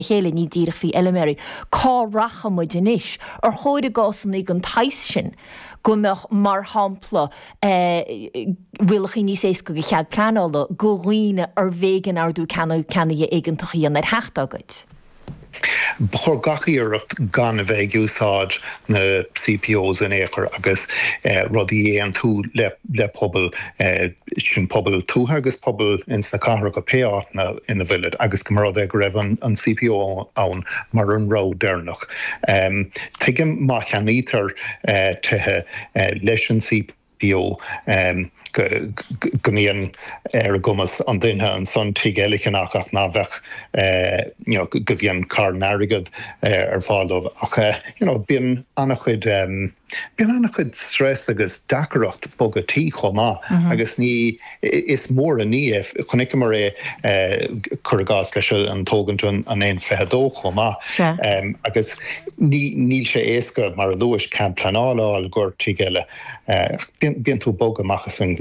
chéile, ní díreach faoi fheiliméaraí. Cá rachaidh muid anois? Ar chóir i gcásanna den tsaghas sin go mbeadh, mar shampla, rialachaí níos éasca do chead pleanála go dhaoine arbh éigean ardú ceannaigh éigeantach a dhéanamh ar theach dá gcuid? Ba chóir gach iarracht gan a bheith ag úsáid na CPOs in aon chor agus rudaí a aontú le pobal. sin pobail tuaithe agus pobail ins na cathracha, pé áit ina bhfuilid, agus gurbh amhlaidh é go raibh an CPO ann mar an rogha deireanach. Tuigim má cheannaítear tithe leis an CPO go mbíonn ar a gcumas an duine ansan tigh eile a cheannach ach ná beadh you know go mbíonn carn airgead ar fáil dóibh ach you know bíonn ana-chuid Bíonn an-chuid stress agus deacaireacht bogadh tí chomh maith agus ní is mór an ní é, chonaiceamar é cur i gcás leis an tógaint an N22 chomh maith agus níl sé éasca mar a luais cead pleanála a fháil i gcomhair tigh eile, bíonn tú bog amach as an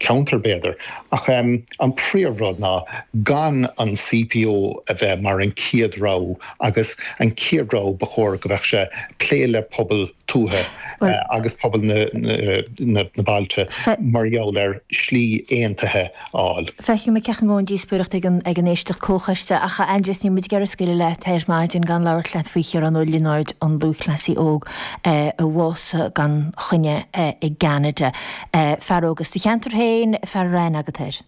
cheantar b'fhéidir ach an príomhrud ná gan an CPO a bheith mar an chéad rogha agus an chéad rogha ba chóir go bheadh sé plé le pobal tuaithe agus pobal na bailte mar gheall ar slí aontaithe a fháil. Feicfidh muid céard a thiocfas ón díospóireacht ag an ag an éisteacht comhchoiste ach a Aindrias níl muid ag iarraidh scaoileadh leat ar maidin gan labhairt leat faoi Chiarán Ó Lionáird an lúthchleasaí óg a bhásaigh gan choinne i gCeanada. Fear óg as do cheantar féin, fear a raibh aithne agat air.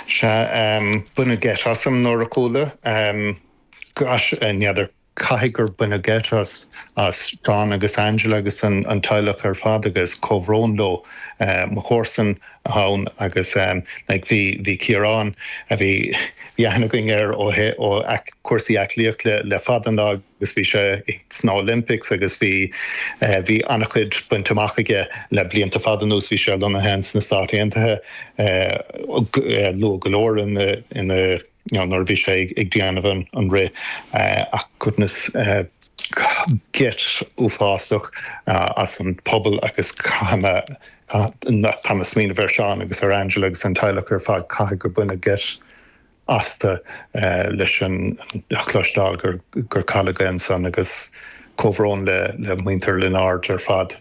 Sea, baineadh geit asam nuair a chuala. Gosh, n'fheadar, caithfidh gur baineadh geit as John agus Angela agus an teaghlach ar fad agus comhbhrón leo. Mo chomharsan iad ann agus like bhí Ciarán, bhí aithne againn air ó cúrsaí aclaíochta le fada an lá, agus bhí sé sna Olympics agus bhí bhí an-chuid bainte amach aige le blianta fada anuas. Bhí sé lonnaithe ins na Stáit Aontaithe luath go leor ina ina you know nuair a bhí sé ag déanamh an an rith ach goodness geit uafásach as an pobal agus caithfidh mé caithfidh mé smaoineamh ar Sheán agus ar Angela agus an teaghlach ar fad caithfidh gur baineadh geit astu leis a chloisteáil gur cailleadh é ansan agus comhbhrón le muintir Lionáird ar fad.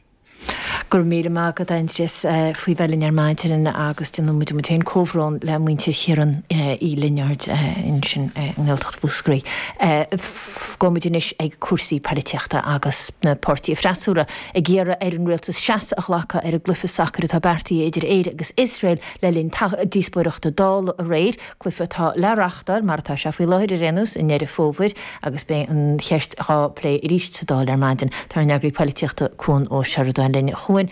Go raibh míle maith agat, Aindrias, faoi bheith linn ar maidin agus déanann muid muid féin comhbhrón le muintir Chiaráin Uí Lionáird ansin i nGaeltacht Mhúscraí. Fanfaidh muid anois ag cúrsaí poilitíochta agus na páirtithe freasúra ag iarraidh ar an rialtas seasamh a ghlacadh ar an gcluiche sacair atá beartaithe idir Éire agus Iosrael. Le linn díospóireachta Dála aréir, cluiche atá le reáchtáil, mar atá sé faoi láthair ar aon nós, i nDeireadh Fómhair agus beidh an cheist dhá plé arís sa Dáil ar maidin, tá ár n-eagraí poilitíochta Cuan Ó Seireadáin linn. A Chuain,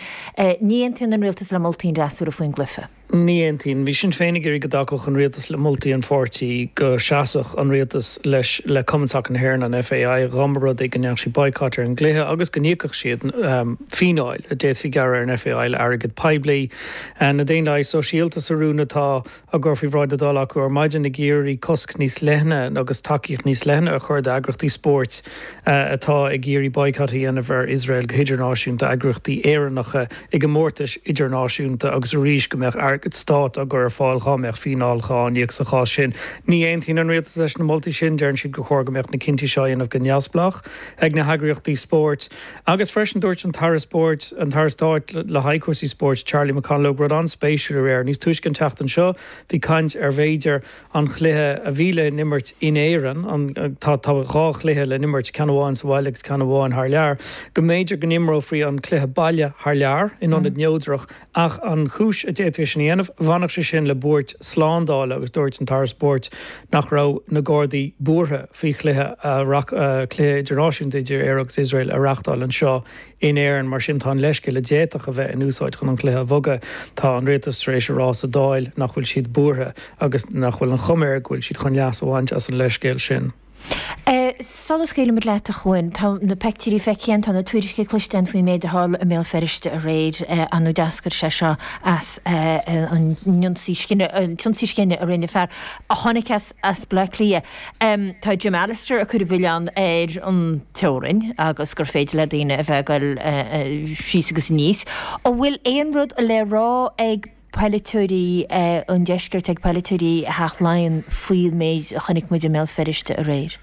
ní aontaíonn an Rialtas le moltaí an fhreasúra faoin gcluiche. Ní aontaíonn. Bhí Sinn Féin ag iarraidh go dtacódh an Rialtas le moltaí an pháirtí, go seasfadh an Rialtas leis le Cumann Sacar na hÉireann, an FAI, dhá mba rud é go ndéanfadh siad boycott ar an gcluiche agus go n-íocfadh siad fíneáil, a d'fhéadfaí a ghearradh ar an FAI le airgead poiblí. Na Daonlathaigh Sóisialta sa rún atá á chur faoi bhráid na Dála acu ar maidin ag iarraidh cosc níos leithne agus tacaíocht níos leithne a chur d'eagraíochtaí spóirt atá ag iarraidh boycott a dhéanamh ar Iosrael go hidirnáisiúnta, eagraíochtaí Éireannacha i gcomórtais idirnáisiúnta agus arís go mbeadh airgead stáit á chur ar fáil dhá mbeadh fíneáil dhá n-íoc sa chás sin. Ní aontaíonn an Rialtas leis na moltaí sin, deireann siad gur chóir go mbeadh na cinntí seo á dhéanamh go neamhspleách ag na heagraíochtaí spóirt. Agus freisin dúirt an tAire Spóirt, an tAire Stáit le haghaidh Cúrsaí Spóirt, Charlie McConalogue rud an-spéisiúil aréir. Níos túisce an tseachtain seo bhí caint ar b'fhéidir an chluiche a bhí le n-imirt in Éirinn, tá, tá dhá chluiche le n-imirt, ceann amháin sa bhaile agus ceann amháin thar lear, go mb'fhéidir go n-imreofaí an cluiche baile thar lear in ionad neodrach Ach an chúis a d'fhéadfaí sin a dhéanamh, bhainfeadh sé sin le buairt slándála agus dúirt an tAire Spóirt nach raibh na Gardaí buartha faoi chluiche, cluiche idirnáisiúnta idir Éire agus Iosrael a reáchtáil anseo in Éirinn mar sin tá an leithscéal a d'fhéadfadh a bheith in úsáid chun an cluiche a bhogadh, tá an Rialtas tar éis a rá sa Dáil nach bhfuil siad buartha agus nach bhfuil an chuma air go bhfuil siad chun leas a bhaint as an leithscéal sin. Sula scaoilimid leat, a Chuan, tá na peictiúirí feicthe againn, tá na tuairisci cloiste againn faoin méid a tharla i mBéal Feirste aréir ar ndóigh d'eascair sé seo as an n-ionsaí scine, an t-ionsaí scine a rinne fear a tháinig as Bleá Cliath. Tá Jim Allister ag cur an mhilleáin ar an teorainn agus gur féidir le daoine a bheith ag goil síos agus aníos. An bhfuil aon rud le rá ag. polaiteoirí ón deisceart ag polaiteoirí Theach Laighean faoin méid a chonaic muid i mBéal Feirste aréir.